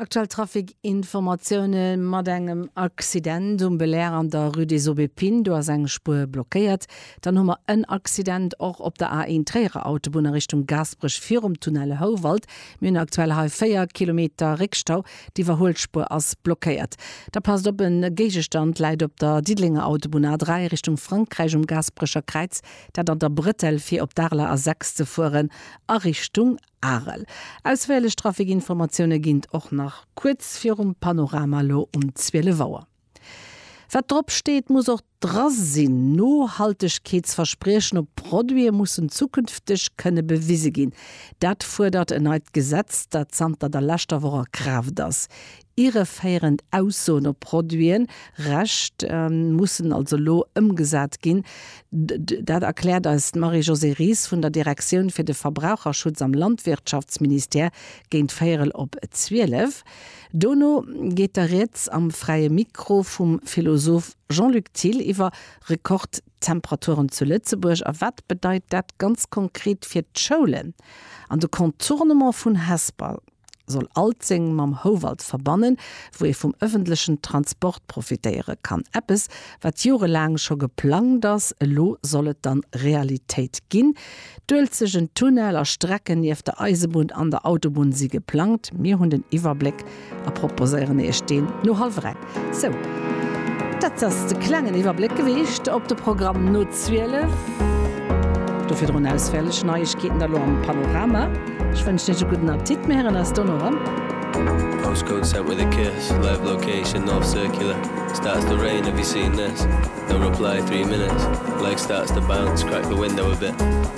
Aktuell Trafic-Informatioune mat engem Accident um Belair an der Rue des Aubépines. Do ass eng Spuer blockéiert. Dann hu mer en Accident och op der A1 Tréierer Autobunn a Richtung Gaasperech virum Tunnel Houwald. Mir hunn aktuell hei 4 Kilometer Réckstau. D'Iwwerhuelspuer ass blockéiert. Da passt op, e Géigestand läit op der Diddelenger Autobunn A3 Richtung Frankräich um Gaasperecher Kräiz, dat an der Brëttel, fir op d'Arler A6 ze fueren a Richtung Arel. Ausféierlech Trafikinformatioune ginn t och nach kuerz virum Panorama elo um 12 Auer. Wat drop steet, muss och dra sinn, Nohaltegkeetsverspriechen op Produite mussen zukünfteg kënne bewise ginn. Dat fuerdert en neit Gesetz, dat zanter der leschter Woch a Kraaft ass. Irreféierend Aussoen op Produiten, Recht mussen also elo ëmgesat ginn. Dat erkläert eis d'Marie-Josée Ries vun der Direktioun fir de Verbraucherschutz am Landwirtschaftsministère géint véierel op zwielef. Dono geet da Rieds am Fräie Mikro vum Philosoph Jean-Luc Thill iwwer Rekordtemperaturen zu Lëtzebuerg a wat bedeit dat ganz konkret fir d'Schoulen an de Contournement vun Hesper. soll Alzeng mam Houwald verbannen, wou ee vum ëffentlechen Transport profitéiere kann. Eppes, wat jorelaang scho geplangt ass, elo soll et dann Realitéit ginn. D'Uelzechten Tunnel a Strecken nieft der Eisebunn an der Autobunn si geplangt. Mir hunn den Iwwerbléck a proposéieren Iech deen no hallwer eng. Sou, dat ass de klengen Iwwerbléck gewiescht op de Programm no 12. Do virdrun ausféierlech Neiegkeeten da lo am Panorama. Ech wënschen Iech e gudden Appetit. Mir héieren eis dono erëm. Postcode sent with a kiss live location north circular starts to rain have you seen this no reply three minutes leg starts to bounce crack the window a bit.